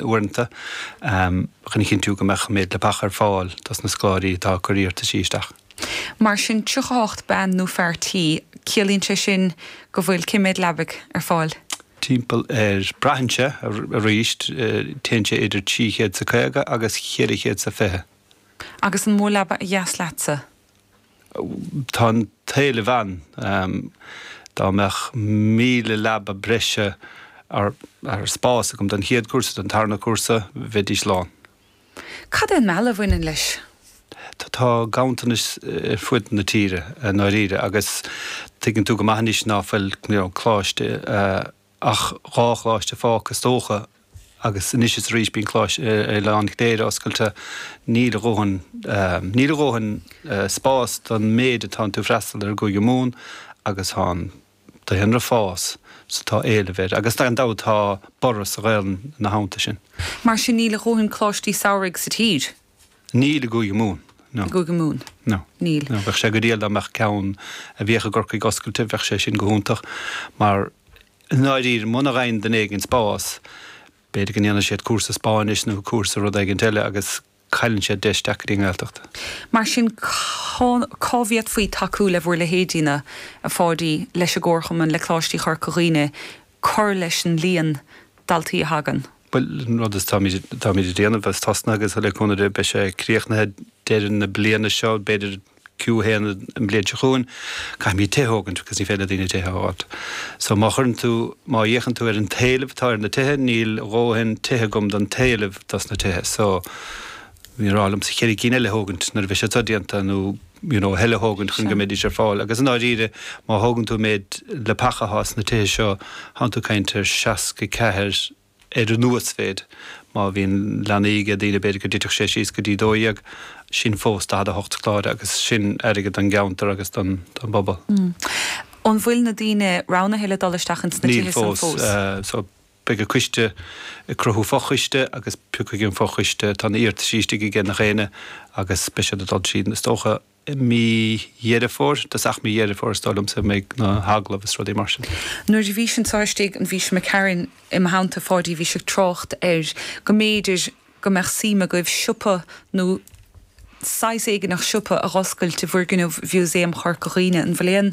uaireanta, chun a chinntiú go mbeadh an méid leapach ar fáil dos na scoláirí atá ag cur iarrtaisí isteach. Mar sin 38 bean nó fhear tí, ciallaíonn sé sin go bhfuil cé méid leabaidh ar fáil? Timpeall ar, braitheann sé, arís téann sé idir trí chéad is a caoga agus cheithre chéad is a fiche. Agus an mó leaba ba dheas leatsa? Tá an t-éileamh ann. Dá mbeadh míle leaba breise nó spás agam don chéad cúrsa, don tarna cúrsa, bheidís lán. Cad é an mealladh a bhaineann leis? Tá ganntanas ar fud na tíre i ndáiríre agus tuigeann tú go maith anois ná fuil Coláiste. ach dhá choláiste fágtha is dócha agus anois is arís bíonn coláiste ar oileán Chléire oscailte, níl a dhóthain, níl a dhóthain spás don méid atá iontu freastal air i gCúige Mumhan agus tá an daonra ag fás so tá éileamh air agus gan dabht tá borradh sa Ghaolainn na laethanta seo. Mar sin níl a dhóthain coláistí samhraidh sa tír? Níl i gCúige Mumhan, no. I gCúige Mumhan? No. Níl. No. Bheadh sé go diail dá mbeadh ceann a bhíodh i gCorcaigh oscailte, bheadh sé sin go hiontach mar i ndáiríre muna bhfaigheann duine éigin spás b'fhéidir go ndéanfaidh siad cúrsa Spáinnise nó cúrsa rud éigint eile agus cailleann siad deis teacht go dtí an Ghaeltacht. Mar sin cén tslí a bhféadfaí tacú le bhur leithéidí, a Pháidí, leis an gComharchumann, le Coláistí Chorca Dhuibhne cur leis an líon daltaí a thagann? Bhuel, an rud atáimid ag déanamh is tá sé tosnaithe agus le cúnamh Dé beidh sé críochnaithe deireadh na bliana seo, b'fhéidir Q1 an bhliain seo chugainn. Caithfimid tithe a thógaint agus ní féidir le daoine tithe a fháilt. So má chuireann tú, má fhéachann tú ar an t-éileamh atá ar na tithe, níl a dhóthain tithe agam don t-éileamh dos na tithe. So bhíothas ag rá liomsa ceithre cinn eile a thógaint nuair a bheidh siad seo déanta nó. you know, tuilleadh a thógaint chun go mbeidís ar fáil agus i ndáiríre má thógann tú an méid leapacha a thá sna tithe seo tánn tú ag caint ar 64 ar an uasmhéid má bhíonn leanaí aige daoine b'fhéidir go dtitfeadh sé síos go dtí 12 sin fós 48 scoláire agus sin airgead don gceantar agus don bpobal. An bhfuil na daoine roghnaithe le dul isteach ins na tithe san fós? Níl fós. Beidh an coiste ag cruthú fo-choiste agus piocfaidh an fo-choiste, tá na iarratasaí istigh aige gach aoinne agus beidh siad ag dul tríd is dócha i mí Dheireadh Fómhair, tosach mí Dheireadh Fómhair is dóigh liomsa a bheidh na h-agallaimh is rudaí mar sin. Nuair a bhís anseo istigh bhí Seán McCarron i mo theannta, Pháidí, bhí sé ag trácht ar go mb'fhéidir, go mbeadh suim agaibh siopa nó saghas éigineach siopa a dh'oscailt i bhfoirgneamh Mhuseum Chorca Dhuibhne. An bhfuil aon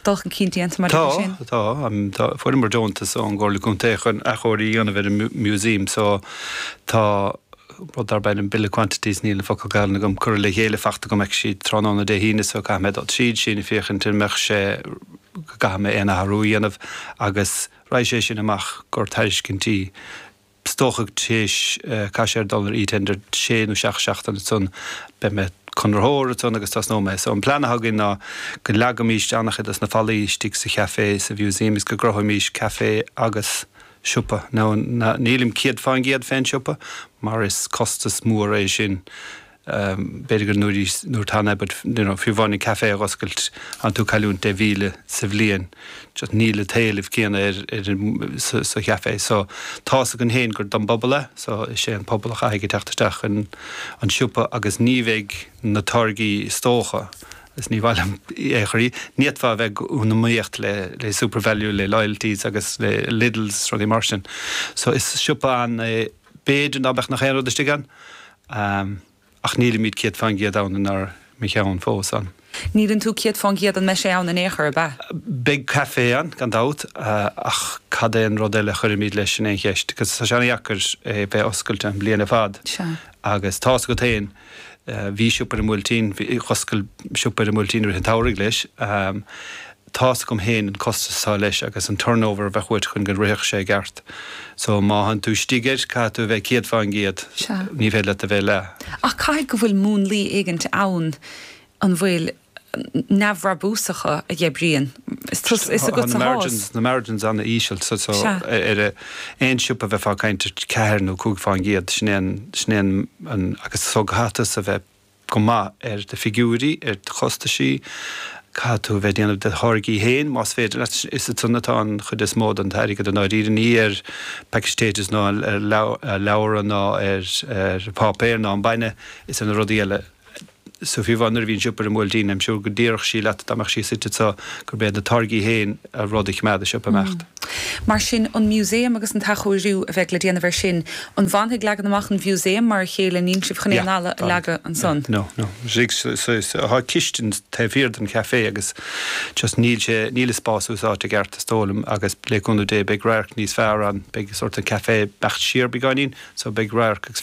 dul chun cinn déanta maidir leis sin? Tá, tá. Fuaireamar deontas ón gComhairle Contae chun athchóiriú a dhéanamh ar an Museum so tá rud darb ainm Bill of Quantities, níl an focal Gaelainn agam, curtha le chéile, faighte agam acu tráthnóna Dé hAoine so caithfidh mé dul tríd sin féachaint an mbeadh sé, go gcaithfidh mé aon athrú a dhéanamh agus raghaidh sé sin amach i gcomhair tairiscintí. is dócha tar éis Cásca ag dul ar e-tender sé nó seacht seachtaine ansan beidh an conraitheoir ansan agus tosnóimid so an plean atá againn ná go leagfaimís an-chuid dos na fallaí istigh sa chaifé sa mhuseum is go gcruthóimís caifé agus siopa now nílim céad fán gcéad féin siopa mar is costas mór é sin B'fhéidir go ndéanfaí in-am an t-am é but you know fiú amháin an café a dh'oscailt tánn tú ag cailliúint deich míle sa bhliain just níl an t-éileamh céanna ar ar an sa sa chafé so tá's againn féin gur don bpobal é so is é an pobal a chaithfidh a theacht isteach an an siopa agus ní bheidh na táirgí is dócha is ní mhaith liom i ndáiríre ní fhéadfá a bheith in iomaíocht le le Supervalu le hAldis agus le Lidls rudaí mar sin so is siopa an é B'fhéidir ná beadh nach aon rud istigh ann ach nílimid céad fán gcéad ann inár cheann fós ann. Níleann tú céad fán gcéad an mbeidh sé ann in aon chor, ab ea? Beidh caifé ann gan dabht ach cad é an rud eile a chuirfimid leis, sin é an cheist agus tá sé an-dheacair é bheith oscailte an bhliain ar fad agus tá's agat féin, bhí siopa ar an mBuailtín, d'oscail siopa ar an mBuailtín i rith an tsamhraidh leis. Tá's agam fhéin an costas atá leis agus an turnover a bheadh uait chun go rithfeadh sé i gceart. So má tánn tú istigh air, caithfidh tú a bheith céad fán gcéad, ní féidir leat a bheith leath. Ach caithfidh go bhfuil múnlaí éigint ann, an bhfuil, neamhbhrabúsacha a dh'oibríonn, is tusa, is agatsa atá a fhios. Tá na margins an-íseal. So ar aon siopa bheifeá ag caint ar cheathair nó cúig fán gcéad, sin é an, sin é an, an, agus so caithfidh tusa a bheith go maith ar do fhigiúirí, ar do chostaisí, caithfidh tú a bheith ag déanamh do tháirgí féin más féidir leat, is ansan atá an chuid is mó den t-airgead i ndáiríre, ní ar phacaí Taytos ná ar leabhra ná ar pháipéar ná an bainne, is ar na rudaí eile. So fiú amháin nuair a bhí an siopa ar an mBuailtín, I'm sure go déarfadh sí leat dá mbeadh sí suite anseo gurb iad na táirgí féin an rud a choimeád an siopa ag imeacht. Mar sin, an Museum agus an t-athchóiriú a bheidh le déanamh air sin, an bhfanfaidh leagan amach an Mhuseum mar a chéile, níl sibh chun aon Yeah, fhalla a tá. leagadh Yeah, ansan? no, no. Sig, so, so, so, tá cistin taobh thiar den chafé agus just níl sé, níl an spás úsáidte i gceart is dóigh liom agus le cúnamh Dé beidh radharc níos fearr ann, beidh sórt an café ag imeacht siar beagáinín so beidh radharc agus.